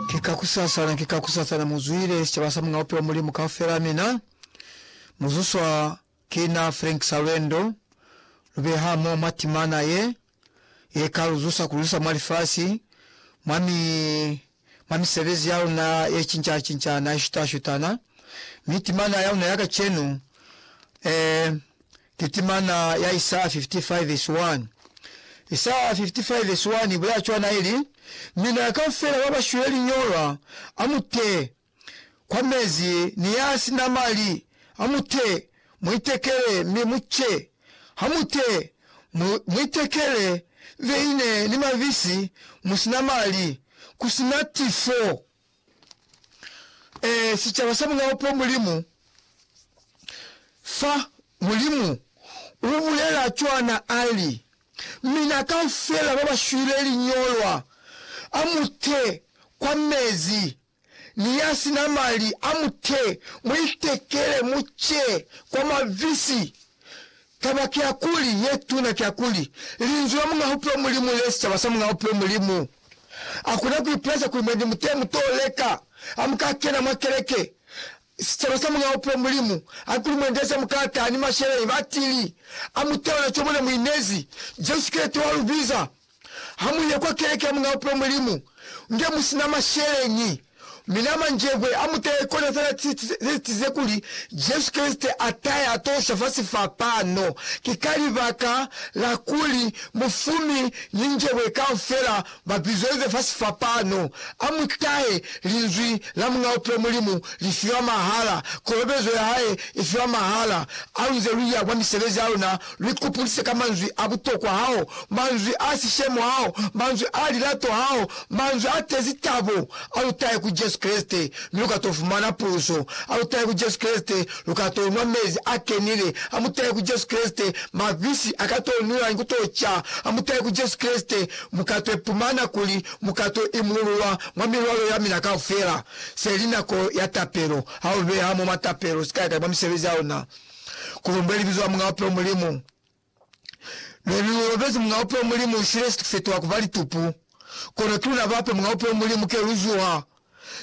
Ki ka kusasana, ki ka kusasana mu zwile sicaba sa Muñ'a Bupilo Mulimu kaufela. Mina mu zuswa ki na Frank Salwendo, lu be hamoho mwa timana ye, ye ka lu zusa ku lu isa mwa lifasi, mwa mi, mwa misebezi ya luna ye cinca-cincana, ye shuta-shutana. Mi timana ya luna ya kacenu, eh, Litimana ya Isaya 55 vesi 1 Isaya 55 vesi 1 ibulela cwana ili, Mina ya kaufela ba ba shwile liñolwa, a mu te kwa mezi, ni ya si na mali, a mu te mu itekele mi mu ce, ha mu te mu, mu itekele veine ni mabisi, mu si na mali, ku si na tifo. e, sicaba sa mulao po Mulimu, fa Mulimu ubulela cwana ali, Mina kaufela babashwile liñolwa, amute kwa mezi, ni yasina mali, amute, muitekele, muce kwa mabisi, Taba kiakuli, ye tuna kiakuli, Linzwi la Muñ'a Bupilo Mulimu li sicaba sa Muñ'a Bupilo Mulimu. Akuna kuipulaisa kuli mwendi mutee mutoo leka ha muka kena mwa keleke. Sicaba sa Muñ'a Bupilo Mulimu haikuli mwendi aze mukalata ni masheleñi batili, a muteona co mona muinezi, Jesu Kreste wa lubiza. Ha mu ye kwa keleke ya Mulao Pilo Mulimu nge mu si na masheleñi, mi na manjebwe a mu taye kona fela ci ze tize kuli Jesu Kreste a taye a to sha fasi fa pano. Ki ka libaka la kuli mufumi ni njebwe kaufela ba bizwelize fasi fa pano. A mu tahe! Linzwi la Mulao Pilo Mulimu li fiwa mahala. Kolobezo ya hae i fiwa mahala. Aluze lu ya kwa misebezi ya luna Lu ikupulise ka manzwi a butokwa hao, manzwi a sishemo hao, manzwi a lilato hao, manzwi a tezi tabo. A lu tahe ku Jesu Kreste, mi lu ka to fumana puso. A lu tahe ku Jesu Kreste, lu ka to nwa mezi a kenile. A mu tahe ku Jesu Kreste, mabisi a ka to nwiwa ni ku to ca. A mu tahe ku Jesu Kreste, mu ka to ipumana kuli mu ka to imululwa mwa milwalo ya mina kaufela. Se li nako ya tapelo. Ha u beha mo mwa tapelo, sikale kale mwa misebezi ya ona. Kulumbe libizo la Muñaa Bupilo Mulimu. Lwenu lu lobezi Muñaa Bupilo Mulimu u shile situ se twa kuba litupu. Kono ki luna bape Muñaa Bupilo Mulimu ke lu zuha.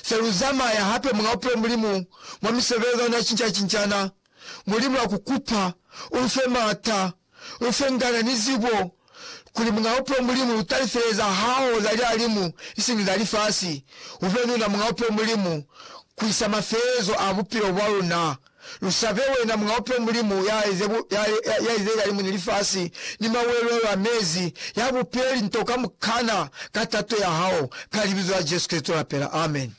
Se lu zamaya hape Muñaa Bupilo Mulimu mwa misebelezano ya cinca-cincana. Mulimu, lwa ku kupa u lu fe maata Usengana ni zibo kuli Muñaupe Mulimu utalifeleza hao za lialimu isiñi za lifasi. Ube nuna Muñaupe Mulimu kuisa mafelezo a bupilo bwaluna. Lusabe wena Muñaupe Mulimu yaize lialimu ni lifasi ni mawelwelo a mezi, yabupe linto kamukana ka tato yahao, ka Libizo la Jesu Kristo lapela. Amen.